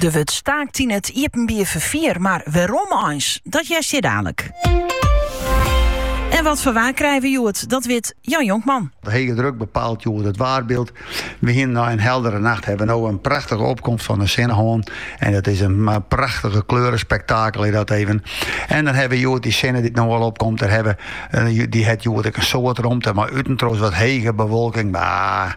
Der wurdt staakt yn it iepenbier ferfier, mar wêrom eins? Dat hearst hjir dadelik. En wat foar waar krije we hjoed? Dat wit Jan Jonkman. De hege druk bepaalt hjoed it waarbyld. We hiene nei in heldere nacht hawwe we no in prachtige opkomst fan de sinne hân. En dat is in eh, prachtige kleurespektakel is dat even. En dan hawwe we hjoed dy sinne dy't no al opkomt. Dêr hawwe, eh, dy hat hjoed ek in soad romte, mar út en troch wat hege bewolking. Mar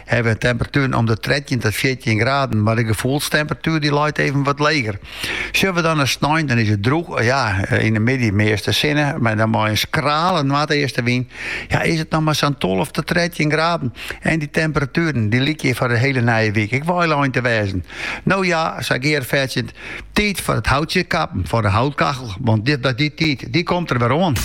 Hawwe temperatueren om de trettjin tot fjirtjin graden, mar de gefoelstemperatuer dy leit even wat leger. Sjoch we dan nei snein, dan is it drûch, ja, yn de middei measte sinne, mar dan mei in skrale noardeastewyn. Ja, is it noch mar sa'n tolve tot trettjin graden. En dy temperatueren, dy lykje hjir foar de hiele nije wyk ek wei lein te wêzen. No ja, sei Geart fertsjend, tiid foar it houtsje kappen, foar de houtkachel, want dy tiid, dy komt der wer oan.